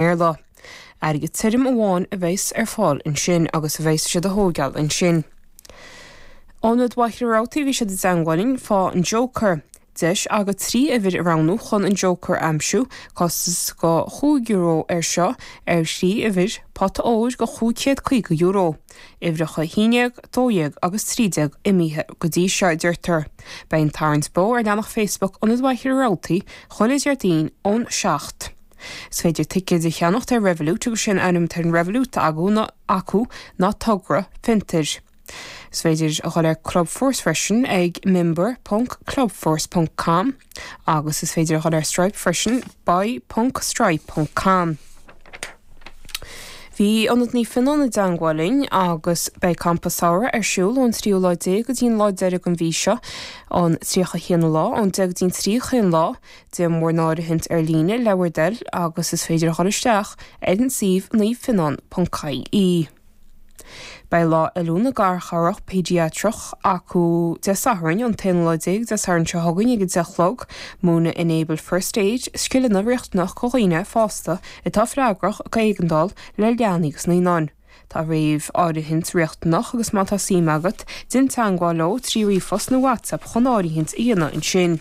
mBéarla. Airgead tirim amháin a bheas ar fáil ansin agus bheas siad dhá thóigeáil ansin. Ionad Mhachaire Rabhartaigh bhí siad i dteangmháil linn fá an Joker. Deis agat trí uimhir a roghnú chun an Joker a aimsiú. Costas go chúig euro ar seo ar thrí uimhir, pota óir go chúig chéad caoga euro. Uimhreacha a haon déag, dó dhéag agus trí déag imithe go dtí seo, a deirtear. Beidh an tarraingt beo ar leathanach Facebook Ionad Mhachaire Rabhartaigh chuile Déardaoin ón seacht. Is féidir ticéid a cheannacht ar Revolut agus sé an t-ainm atá ar an Revolut agu, nó acu ná Togra Fiontair. Is féidir a dhul ar Clubforce freisin ag member.clubforce.com agus is féidir a dhul ar Stripe freisin buy.stripe.com. Bhí Ionad Naomh Fionán i dteangmháil linn agus beidh Campa Samhraidh ar siúl ón tríú lá déag go dtí'n lá deiridh den mhí seo, an 31 lá, ón deich go dtí'n trí 'chaon lá, Déan bhur n-áirithint ar líne le bhur dtoil agus is féidir a dhul isteach ar an suíomh naomhfionán.ie. Beidh lá oiliúna garchabhrach péidiatrach acu Dé Sathairn an t-aonú lá déag Dé Sathairn seo chugainn ag a deich a chlog. Múineann Enable First Aid, scileanna riachtanach go dhaoine fásta atá freagrach go éigeandáil le leanaí agus naíonáin. Tá réamháirithint riachtanach agus má tá suim agat, déan teangmháil leo trí ríomhphost nó WhatsApp chun áirithint a dhéanamh ansin.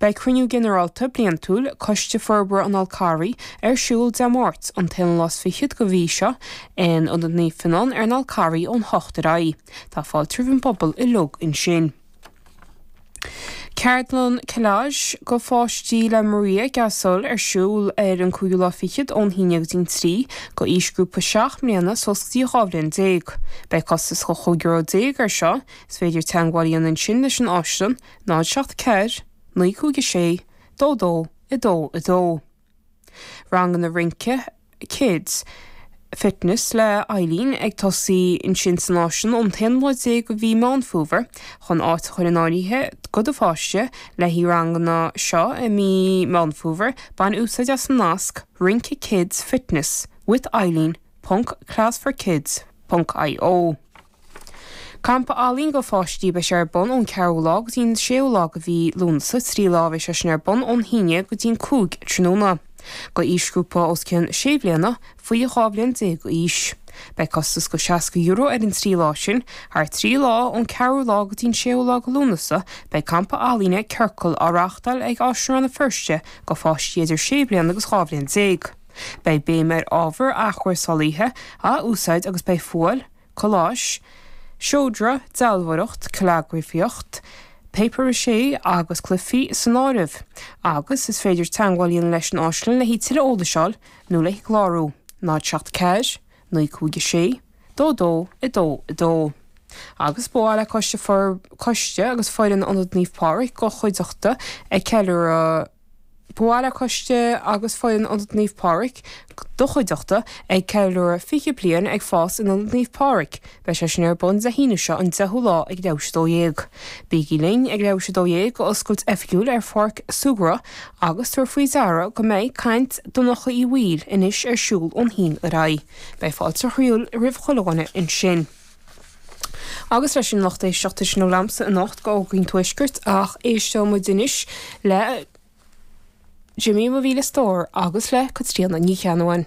Beidh Cruinniú Ginearálta Bliantúil Coiste Forbartha an Fháil Charraigh ar siúl Dé Máirt, an t-aonú lá 's fichead de mhí seo, in Ionad Naomh Fionán ar an Fhál Carrach ón hocht ar aghaidh. Tá fáilte roimh an bpobal uilig ansin. Ceardlann Collage go pháistí le Maria Gasol ar siúl ar an cúigiú lá fichead ón haon go dtí an trí go aoisghrúpa seacht mbliana suas go dtí dhá bhliain déag. Beidh costas €15 ar seo. Is féidir teangmháil a dhéanamh ansin leis an Áislann, 0 7 4 9 5 6 2 2 2 2. Ranganna rince, Kids Fitness le Eileen ag tosaí ansin san Áislann ón t-aonú lá déag go mhí Meán Fómhair. Chun áit a chur in áirithe go do pháiste le haghaidh na ranganna seo i mí Meán Fómhair, bain úsáid as an nasc Rince Kids Fitness with Eileen ponc class for kids ponc io. Campa ealaíon go pháistí a bheas ar bun ón 4ú lá go dtí an 6ú lá go mhí Lúnasa, trí lá a bheas sé sin ar bun ón haon go dtí an 5 tráthnóna. Do aoisghrúpa os cionn 6 bhliana, faoi 12 bhliain d'aois. Beidh costas go €60 ar an trí lá sin. Thar trí lá, ón 4ú lá go dtí an 6ú lá go Lúnasa, beidh campa ealaíne, Ciorcal, á reáchtáil ag Áislann Rann na Feirste go pháistí idir 6 bhliana agus 12 bhliain. Beidh béim ar ábhar athchúrsáilte a úsáid agus beidh fuáil, colláis, seodra, dealbhóireacht, callagrafaíocht, papier maché agus cluifí san áireamh, agus is féidir teagmháil a dhéanamh leis an Áislann le haghaidh tuilleadh eolais a fháil nó le clárú, 074 956 2222. Agus ba mhaith le Coiste Coiste agus Foireann Ionad Naomh Pádraig do chuideachta ag ceiliúradh. Ba mhaith le Coiste agus foireann Ionad Naomh Pádraig, do chuideachta, ag ceiliúradh fiche bliain ag fás in Ionad Naomh Pádraig. Beidh sé sin ar bun Dé hAoine seo an deichiú lá ag leath i ndiaidh 12. Bígí linn ag leath i ndiaidh 12 d'oscailt oifigiúil ar pháirc súgartha agus tabhair faoi deara go mbeidh caint Dhonncha Uí Bhaoill anois ar siúl ón haon ar aghaidh. Beidh fáilte chroíúil roimh achan duine ansin. agus sin leis an lucht éisteachta sin a labhramsa anocht go Eoghainín Tuaiscirt ach éisteoidh muid anois le Jimmy Mo Mhíle Stór agus le Caitríona Ní Cheannabháin.